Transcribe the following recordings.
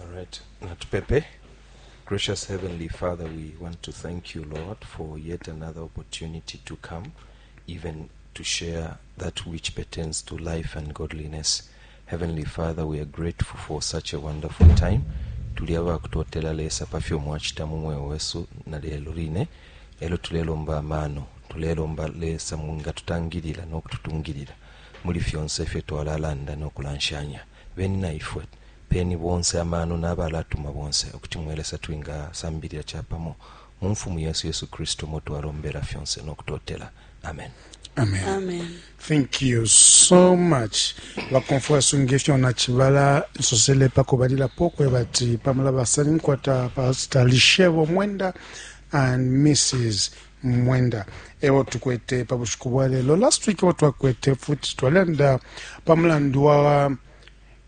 All right. Natupepe. Gracious Heavenly Father, we want to thank you, Lord, for yet another opportunity to come, even to share that which pertains to life and godliness. Heavenly Father, we are grateful for such a wonderful time. tuli abakutotela lesa pa fyo mwacita mu mweo wesu na lelo line elo tulelomba amaano tulelomba lesa nga tutangilila n'okututungilila muli fyonse ifyo twalalanda n'okulanshanya no Beni naifwe, peni bonse amano naba latuma bonse, ukuti mwe Lesa twinga sambilila capamo mu mfumu yesu Yesu Kristu umo twalombela fyonse no kutotela. Amen. Amen. Amen. Thank you so much. Bakonfwa sunge fyo na chibala nsosele pa kubalila pokwe bati pamela basani nkwata pastor Lishebo Mwenda and Mrs. mwenda ewo tukwete pa bushiku bwa lelo last week ewo twakwete futi twalanda pa mulandu wa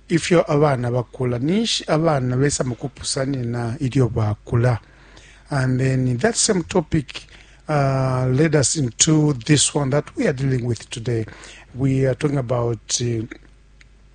ifyo abana bakula ninshi abana besa mukupusanina ilyo bakula and then that same topic uh, led us into this one that we are dealing with today we are talking about uh,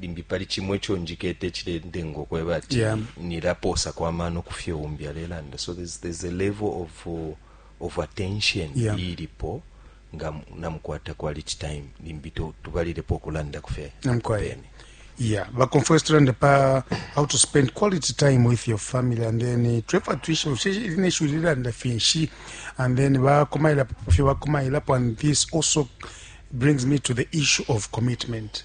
limbi pali cimo ico njikete cilendenga ukweba ati yeah. nilapoosako amano ku fyo umbi alelanda so there's, there's a level of, uh, of attention yeah. ilipo nga namukwata quality time limbi tubalilepo okulanda ku fye yeah but confess to render pa how to spend quality time with your family and then uh, trevor tuition in issue and the finshi and then ba komaila pa fyo ba komaila pa and this also brings me to the issue of commitment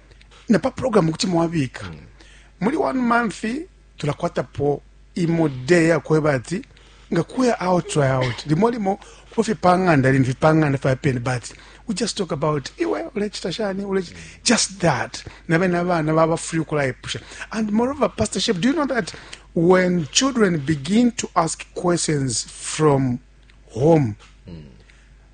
na pa programu kuti mwabika mm. muli one month tulakwatapo imo day yakweba ati nga kuya out try out limo limo kuba fye pang'anda lini fye pang'anda fya peni but we just talk about iwe ulechita shani ulechita just that na bene abana baba free ukulayipusha and moreover pastor shep do you know that when children begin to ask questions from home mm.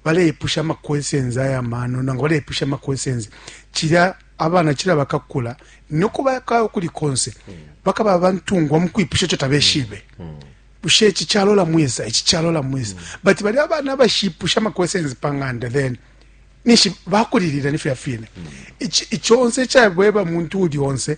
baleipusha ama questions aya mano nangu baleipusha ama questions cilya abana cila bakakula noko baka kuli konse mm. bakaba abantungwa mu kwipusha ico tabeshibe mm. mm. bushe ici calola mwisa ici calola mwisa mm. but bali abana abashipusha ama questions panganda then nishi bakulilira nifya fine mm. iconse cabweba muntu uli onse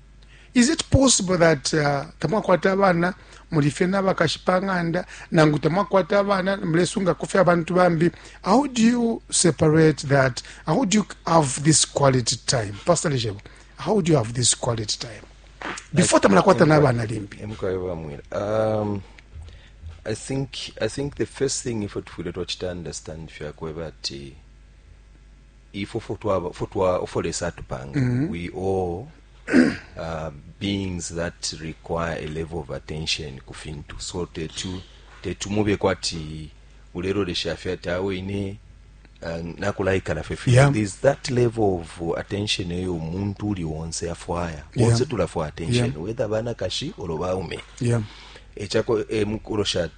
is it possible that uh, tamwakwata abana muli fye n'abakashi pa ng'anda nangu tamwakwata abana mulesungako fye abantu bambi how do you separate that how do you have this quality time pastor lejebo how do you have this quality time before tamulakwata n'abana limbi um, I think I think the first thing if we tufwile twachita understand fyakweba ati ifwe fwe twaba fwe twa fwe lesa atupanga mm -hmm. we all uh, beings that require a level of attention ku fintu so tetu tetu mube kwati ulelolesha fye ati awe ine uh, nakulaikala fye fye yeah. there's that level of attention eyo omuntu uli wonse afwaya yeah. wonse tulafwaya attention yeah. whether banakashi olo baume yeah. echako emukulosha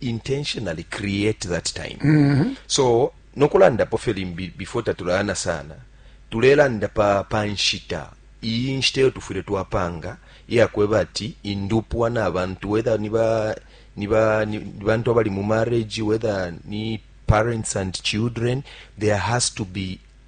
intentionally create that time mm -hmm. so nokulanda po fyo limbi before tatulana sana tulelanda pa pa nshita iyi nshita yo tufwile twapanga iya kweba ati indupwa na bantu whether ni ba ni ba ni bantu abali mu marriage whether ni parents and children there has to be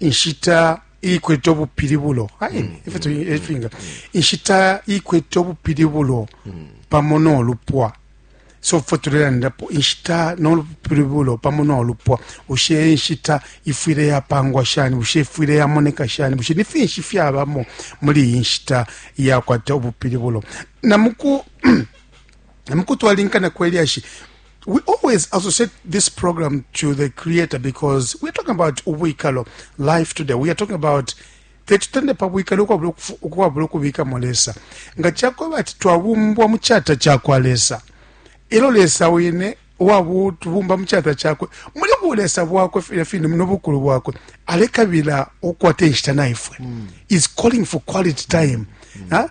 inshita ikwete ubupilibulo aini mm. ifyo mm. efinga inshita ikwete ubupilibulo mm. pamo n'olupwa so fo tulelandapo inshita n'olupilibulo pamo n'olupwa ushe inshita ifwile yapangwa shani ushe ifwile yamoneka shani bushe ni finshi fyabamo muli iyi nshita yakwata ubupilibulo namuku namukutwalinkana kwelyashi we always associate this program to the creator because we're talking about ubwikalo life today we are talking about tetutende pa bwikalo ukwabula ukubikamo lesa nga cakweba ati twabumbwa mu cata cakwa lesa elo lesa wine uwabutubumba mu cata cakwe muli bulesa bwakwe fine fine munobukulu bwakwe alekabila ukwata inshita naifwe mm. is calling for quality time mm. huh?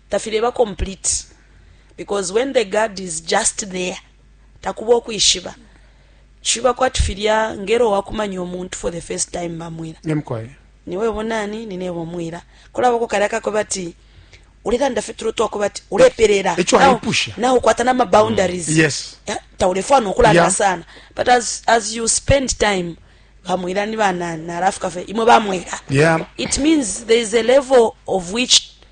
tafileba complete because when the guard is just there takuba ukwishiba ciba kwati filya ngelo wakumanya umuntu for the first time bamwila nimukoye niwebo nani ninebo mwila kulabako kalya kakwe bati ulilanda fye tulo twako bati ulepelela Echo Now- aipusha. now ukwata na maboundaries Mm. Yes. Ya, taulefwana ukulanda Yeah. sana but as, as you spend time bamwila ni banani nalafuka fye imwe bamwila yeah it means there is a level of which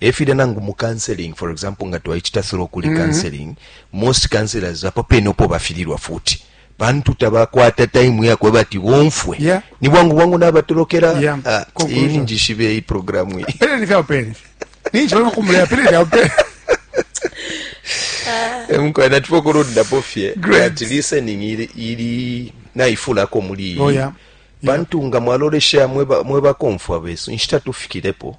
e filya nangu mu counseling for example nga twaicita through kuli mm-hmm. counseling mm -hmm. most counselors apo pene upo bafililwa futi pantu tabakwata taimu yakwe bati bomfwe yeah. ni bwangu bwangu nabatolokera yeah. ah, ini njishibe iyi programu iyi eh, mukwana natipo kulundapo fye ati listening ili, ili naifulako muli iyi oh, yeah. pantu yeah. nga mwalolesha mwebakomfwa mwe besu inshita tufikirepo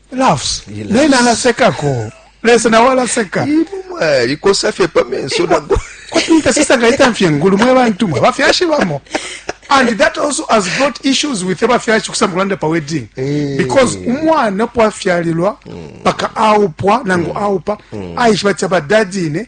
laughs nena alasekako lesa nawe alaseka likosa fye pa menso nago kwatinta sisa ngaitamfye ngulu mwe bantu mwe bafyashi bamo and that also has brought issues with abafyashi kusamba kulanda pa wedding eh. because umwana po afyalilwa mm. paka aupwa nangu mm. aupa mm. aishiba ti abadadine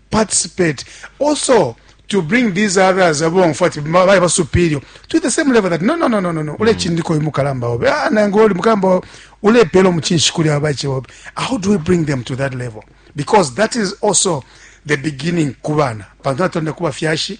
participate also to bring these others abo ngfwa ati bali ba superior to the same level that no no no no no no ule mm. chindiko uyu mukalamba obe ah nango uli mukalamba ule pelo mchinshi kuli abache obe how do we bring them to that level because that is also the beginning kubana pantu atonda kuba fyashi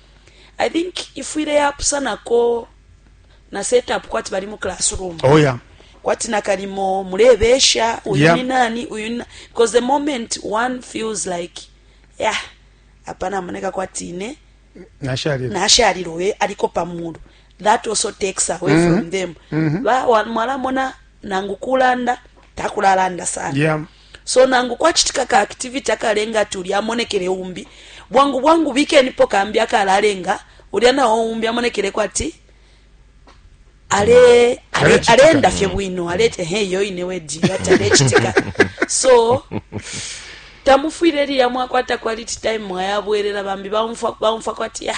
i think ifwile yapusanako na setup kwati bali mu classroom oh, yeah. kwati nakalimo mulebesha uyu yeah. ni nani uyu ni because the moment one feels like yeah apa namoneka kwati ine nashalilwe aliko pamulu that also takes away mm -hmm. from mm-hmm. them mm -hmm. ba mwalamona nangu kulanda takulalanda sana yeah. So nangu kwacitika ka activity akalenga ati ulya amonekele umbi, bwangu bwangu bikenipo kambi akalalenga ulya na o umbi amonekeleko ati ale ale aleenda fye bwino alete he yo ine wedi ati alechitika so tamufwile liya mwakwata quality time mwayabwelela bambi baumfwa baumfwa kwati ya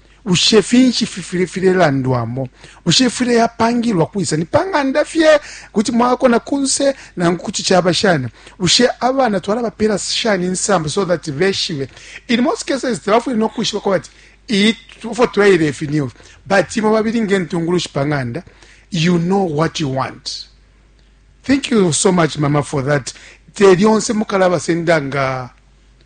Bushe finshi fifwile filelandwamo? Bushe ifwile yapangilwa kwisa? Ni pa ng'anda fye? Kuti mwakona kunse nangu kuti caba shani? Bushe abana twalabapela shani insambu so that beshibe? In most cases tabafwile no kwishiba kwa bati iyi fo twaile ifi ni ufi but imwe babili ngentungulushi pa ng'anda you know what you want thank you so much mama for that te lyonse mukalabasenda nga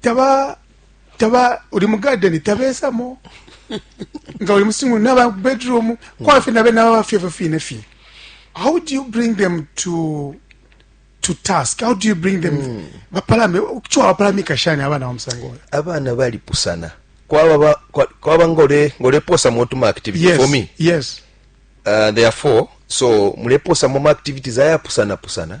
taba taba uli mu garden tabesamo nga uli musingu naba bedroom kwafe nabe naba bafye fye fine fine how do you bring them to to task how do you bring them mm. bapalame kyo bapalame kashani abana omsango abana bali pusana kwaba ba, kwa, kwaba ngole ngole posa motu ma activity yes, for me yes uh, therefore so mule posa mo activities aya pusana pusana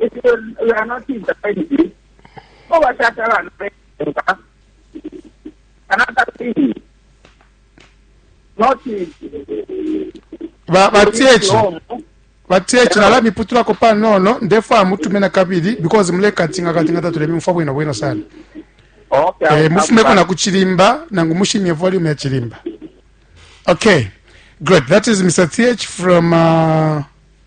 If you, you are not in the family, go back to Alan. Another thing, not batiechi batiechi nala miputulako panono ndefwaya mutume na kabili because mulekatinga katinga tatulebe mufwa bwino bwino sana okay, eh, mufumeko na kuchilimba nangu mushimye volume ya chilimba okay good that is mr th from uh,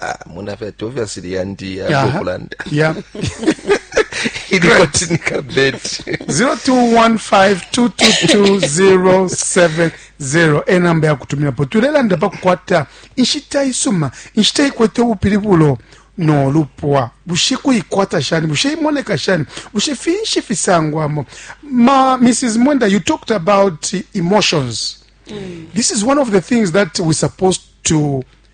Ah, mona fe tovya siri yandi ya Aha. Gopland. ya Ili koti nika bed. 0215222070 enamba yakutumilapo tulelanda pakukwata inshita isuma inshita ikwete ubupilibulo nolupwa bushe kuikwata shani bushe imoneka shani bushe finshi fisangwamo ma mrs mwenda you talked about emotions this is one of the things that we supposed to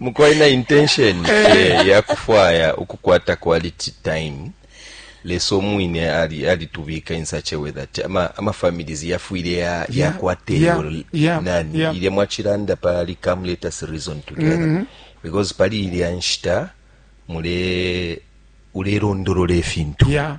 mukwai na intention eh, ya kufwaya ukukwata quality time lesa omwine alitubika in such a way that amafamilies ama yafwile yakwata eyo nani ilya mwachilanda pali come let us reason together mm -hmm. because pali ilya nshita mule ulelondolola efintu yeah.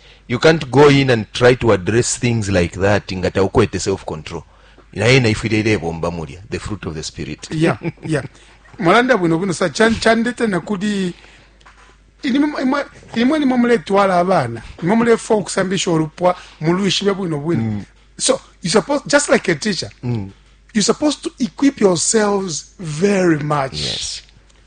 You can't go in and try to address things like that nga taukwete self control naye naifwile ilebomba mulya the fruit of the spirit yeah, yeah. mwalanda bwino bwino sa chandete nakuli imwe nimwe muletwala abana nimwe mulefa okusambisha olupwa mulwishibe bwino bwino mm. so you suppose just like a teacher mm. you supposed to equip yourselves very much yes.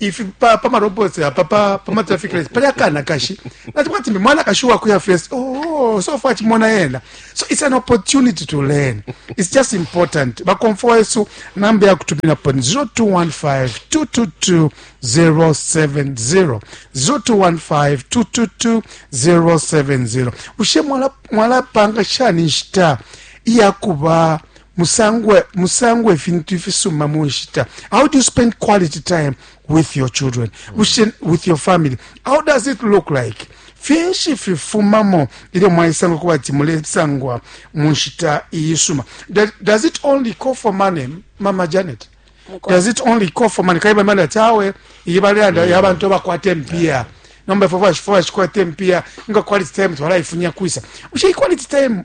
ifi pa pa marobots apa pa pa ma traffic lights pali akana kashi nati kwati mbe mwana kashi wa kuya first oh so far chimona yena so it's an opportunity to learn it's just important ba comfort yesu namba ya kutumina pa 0215 222 070 0215 222 070 ushe mwala mwala panga shani nshita iyakuba musangwe musangwe ifintu ifisuma mu nshita how do you spend quality time with your children mm. with your family how does it look like finshi fifumamo ilyo mwaisanga kuba ati mulesangwa mu nshita iyisuma does it only call for money mama janet does it only call for money kaiba mali ati awe iyi baleyanda mm. yabantu abakwata empiya yeah. nomba fo vaxi fo vaxi kwate mpiya nga quality time twalaifunya kwisa uxe quality time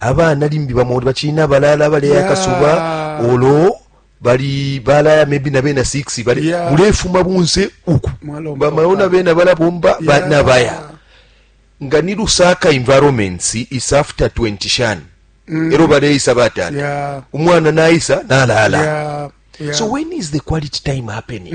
abana limbi bamo uli bacili nabalaala baleya Yeah. akasuba olo bali balaya maybe na bena 6 bali Yeah. mulefuma bunse uku Mwalomba bamaona papa. bena balabomba ba- Yeah. nabaya nga ni lusaka environments is after 20 shani ero baleisa batata Mm. Yeah. umwana naisa nalaala Yeah. Yeah. so when is the quality time happening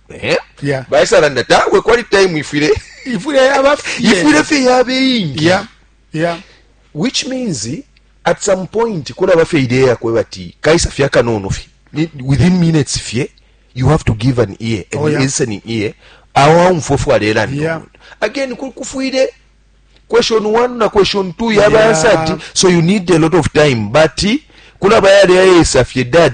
Eh? Yeah. baisalanda tawe kwali time ifwile ifwile yaba fye. ifwile fye yabe ingi Yeah. Yeah. which means at some point kulaba fye idea yakwe bati kaisa fye akanono fye Ni- within minutes fye you have to give an ear an Oh, yeah. listening ear awo aumfwa fwe alelanda Yeah. omuntu. again ku- kufwile question one na question two yaba Yeah. answered so you need a lot of time but kulaba yali ayesa fye dad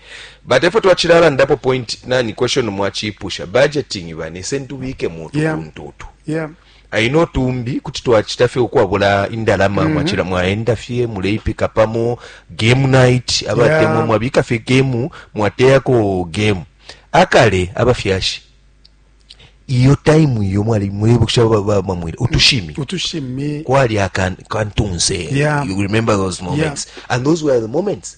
But efo twachilalandapo point nani question mwachipusha budgeting bane sentubike mutu yeah. kuntu utu yeah. aino tumbi kuti twachita fye ukwabula indalama mm -hmm. mwachila mwaenda fye muleipika pamo game night abatemwa yeah. mwabika fye game mwateyako game akale abafyashi iyo time iyo mwali mwebukisha bamwire utushimi utushimi kwali akantunse yeah. you remember those moments yeah. and those were the moments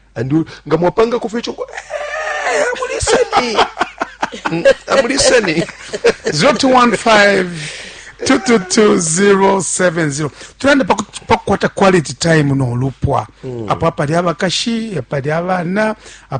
andu nga mwapangako fye ico eh, amuliseni Mm, amuliseni 0215 222070 tulande paku- pakukwata quality time nolupwa apo apali abakashi apali abana